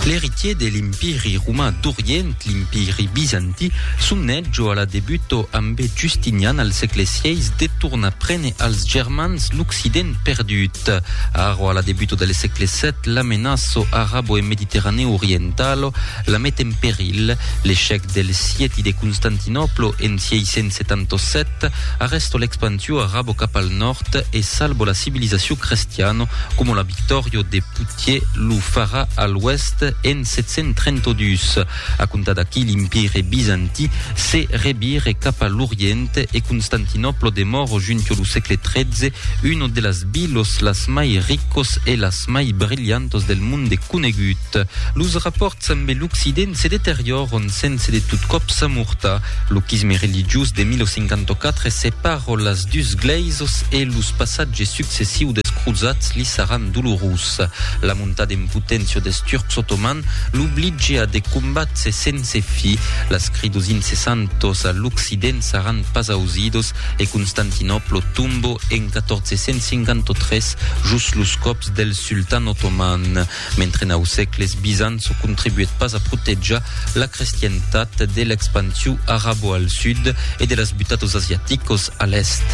L'eritier de l'Empiri roman d'Orient, l'Empiri bizanti, son nètjo a la debuto ambe Justinian al sègle vi de tornar prene als Germans l'Occident perdut. Aro a la debuto del sègle vii l'amenaço arabo e mediterranèo orientalo la met en peril. L'echec del sieti de Constantinoplo en 677 Cat, arresto l'expansiu arabo cap al nòrd e salvo la civilisaciu crestiano, coma la Victòrio de Poitiers lo farà a l'oèst en 732. A comptar d'aquí l'Empire Bizantí se revire cap a l'Orient e Constantinòplo demòro junto lo sègle XIII uno de las vilos las mai ricos e las mai brilhantos del monde conegut. Los rapòrts ambe l'Occident se deteriòron sense de tot còp s'amortar. Lo chisme religiós de 1054 separò las dus glèisos e los passatges successius des crosats li saràn dolorós. La monta en poténcia des Turcs otomans l'oblige a de combats e sense fi. Las cridos incessantos a l'Occident saràn pas ausidos e Constantinòplo tombò en 1453 jos los còps del sultan otoman. Mentre nau sècles Bizanço contribuèt pas a protejar la crestientat de l'expansiu arabo al sud e de las butatos asiaticos a l'èst.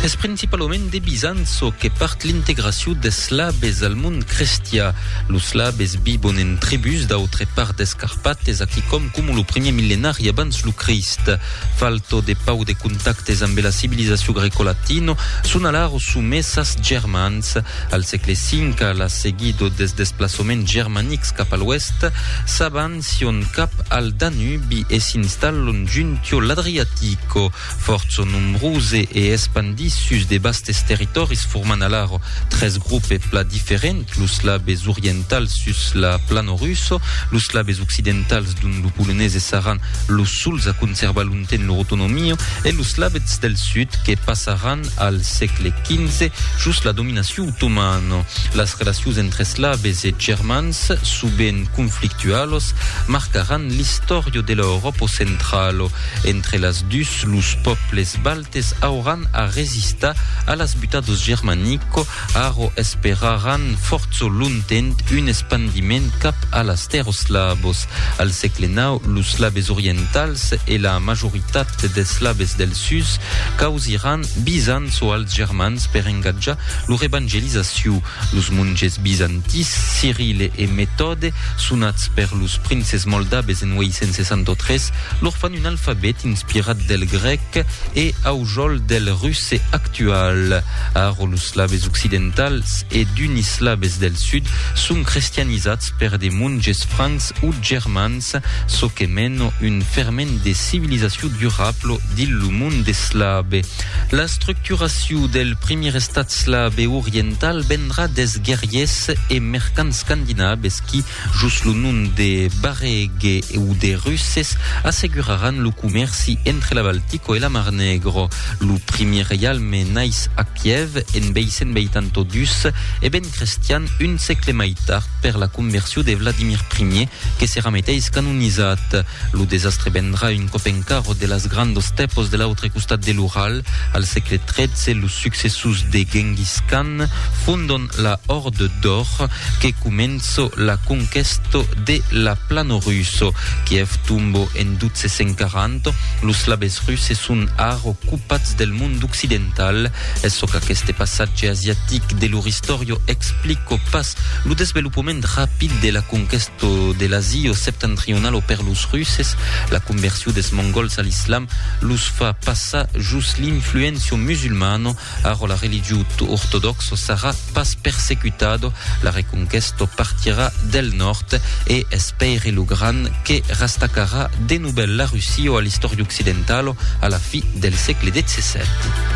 Es principalament de Bizanço que part l'integracion des Slaves al mond crestià. Los Slaves vivon en tribús d'autre part des Carpates, aquicòm coma lo primièr millenari abans lo Crist. Falto de pauc de contactes ambe la civilizacion grecolatino, son alara somés as Germans. Al sègle V, a la seguido des desplaçaments germanics cap a l'oèst, s'avancion cap al Danubi e s'installon juntiò l'Adriatico. Fòrt son nombrose e espandís sus de bastes territòris formant alaro tres groupes plat diferents, los slabes orientals sus la plano russo, los slabes occidentals dont lo polonese saràn los suls a conservar longtemps lor autonomia e los slabes del sud que passaràn al sègle XV jos la dominacion otomana. Las relacions entre slabes e germans, sovent conflictualos, marcaràn l'istòria de l'Euròpa centrala. Entre las dus, los pòbles baltes auràn a resistar a las butas dos germanico, arro esperaràn fòrço lontent un espandiment cap a las tèrros slavos. Al sègle nau, los slaves orientals e la majoritat des slaves del sus causiràn bisants o als germans per engatjar lor evangelizacion. Los monges bizantins Cirile e Metòde, sonats per los princes moldabes en 863, lor fan un alfabet inspirat del grèc e aujòl del russe actual. Ara los slaves occidentals e d'unis slaves del sud son crestianizats per de monges francs o germans Ets çò que meno un ferment de civilizacion durablo dins lo monde eslave. La structuracion del primier estat slave oriental vendrà des guerriers e mercants scandinaves qui, jos lo nom de Baregue o de Russes, asseguraràn lo comèrci entre la Baltico e la Mar Negro. Lo primier reialme naix a Kiev en 882 e ben Estat crestian un sègle mai tard per la conversion de Vladimir I, que serà meteis canonizat. Lo desastre vendrà un còp encara de las grandes stèpos de l'autre costat de l'Ural. Al sègle XIII, los successors de Genghis Khan fondon la Horde d'Or, que comença la conquèsta de la plana russa. Kiev tomba en 1240. Los slaves russes son ara ocupats del mond occidental. Es çò qu'aqueste passatge asiatic de lo Ristorio explico pas, lo desvelopament rapid de la conquèsto de l'Asio septentrionalo per los Russes, la conversion des Mongols a l'Islam, los fa passar jos l'influencio musulmano, arrò la religió ortodòxo sarà pas persecutado, la reconquèsto partirà del nòrd e es Pèire lo Grand que rastacarà de novèl la Rusio a l'Istorio occidentalo a la fi del sègle xvii.